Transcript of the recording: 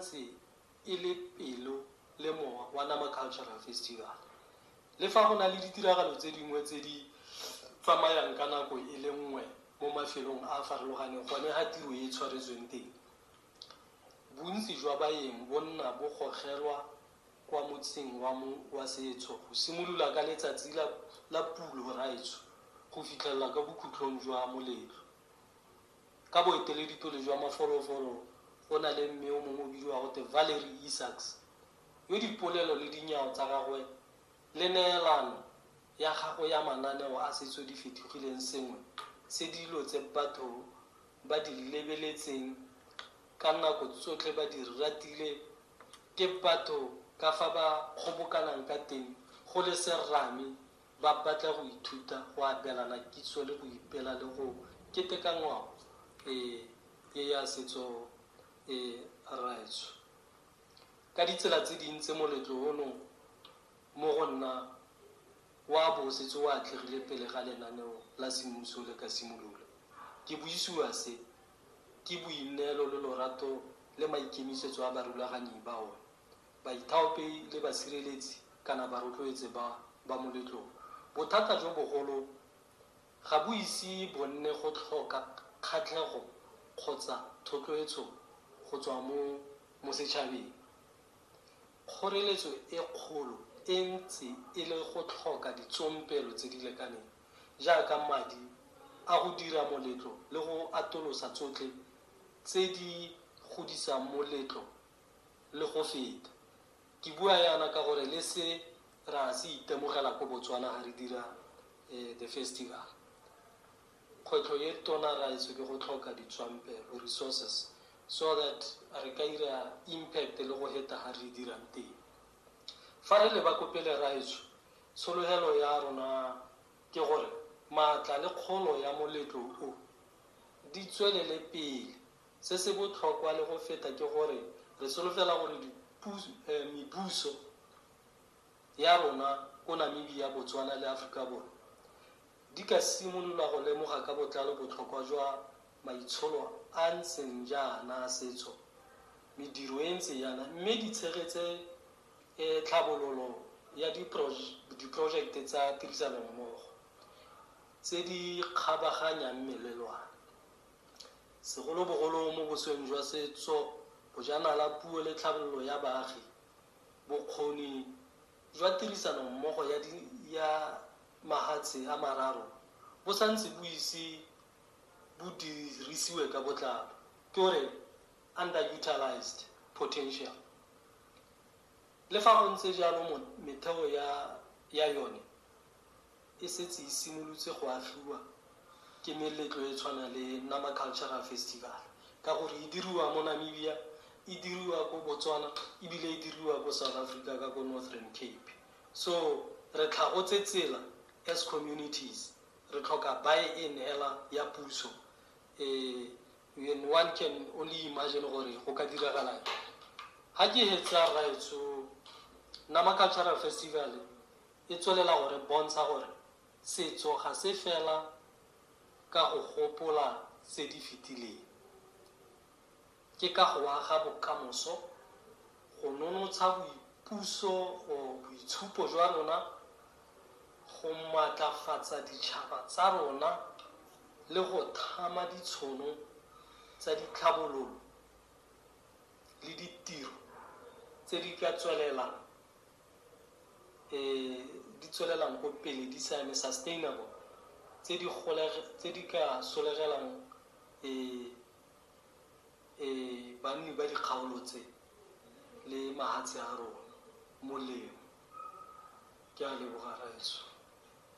Tse e le pelo le mowa wa Nama Cultural Festival. Le fa go na le ditiragalo tse dingwe tse di tsamayang ka nako e le nngwe mo mafelong a a farologaneng gone ga tiro e tshwaretsweng teng, bontsi jwa baeng bo nna bo gogelwa kwa motsing wa mo wa setso go simolola ka letsatsi la la pulo, raetsho, go fitlhelela ka bokhutlong jwa moletlo. Ka boeteledipele jwa mafolofolo go na le mme yo mongwe o bidiwa gote Valerie Isaacs, yo dipolelo le dinyao tsa gagwe le neelano ya gagwe ya mananeo a setso di fetogileng sengwe se dilo tse batho ba di lebeletseng ka nako tsotlhe ba di ratile ke batho ka fa ba kgobokanang ka teng go le serame Ba batla go ithuta go abelana kitso le go ipela le go keteka ngwao e e ya setso e raetsho ka ditsela tse dintse. Moletlo ono mo go nna wa bo o setse o atlegile pele ga lenaneo la semmuso le ka simolola. Ke buisiwa se ke boineelo le lorato le maikemisetso a barulaganyi ba one baithaopi le basireletsi kana barotloetse ba ba moletlong. Bothata jo bogolo ga bo ise bo nne go tlhoka kgatlhego kgotsa thotloetso go tswa mo mo setšhabeng. Kgoreletso e kgolo e ntse e le go tlhoka ditsompelo tse di lekaneng jaaka madi a go dira moletlo le go atolosa tsotlhe tse di godisang moletlo Le go feta. Ke bua yana ka gore le se ra se itemogela ko Botswana ha re dira the festival. Kgwetlho e tona raetsho ke go tlhoka ditswampelo, resources, so that re ka ira impact le go heta ha re dirang teng. Fa re leba ko pele raetsho, tshologelo ya rona ke gore maatla le kgolo ya moletlo o di tswelele pele Se se botlhokwa le go feta ke gore re solofela gore mebuso ya rona ko Namibia, Botswana le Aforika Borwa di ka simolola go lemoga ka botlalo botlhokwa jwa maitsholo a ntseng jaana a setso, mediro e ntse yana mme di tshegetse tlhabololo ya diporojekte tsa tirisanommogo tse di kgabaganyang melelwane. Segolobogolo mo bosweng jwa setso, bojanala, puo le tlhabololo ya baagi, bokgoni jwa tirisano mmogo ya di ya mahatshe a mararo bo sa ntse bo ise bo dirisiwe ka botlalo, ke o re underutilised potential. Le fa go ntse jalo metheo ya ya yone e setse e simolotse go agiwa ke meletlo e tshwana le Nama Cultural Festival ka gore e diriwa mo Namibia, e diriwa ko Botswana ebile e diriwa ko South Africa ka ko Northern Cape. So re tlhagotse tsela as communities, re tlhoka buy-in hela ya puso and one can only imagine gore go ka diragalang. Ha ke hetsa rraetsho Nama Cultural Festival E tswelela go re bontsha gore setso ga se fela ka go gopola tse di fetileng. Ke ka go aga bokamoso, go nonotsha boipuso go boitshupo jwa rona, go maatlafatsa ditšhaba tsa rona le go thama ditshono tsa ditlhabololo le ditiro tse di ka tswelelang. e di tswelelang ko pele di siame, sustainable, tse di tse di ka solegelang e e banni ba dikgaolo tse le mahatshe a rona molemo. Ke a leboga rraetsho.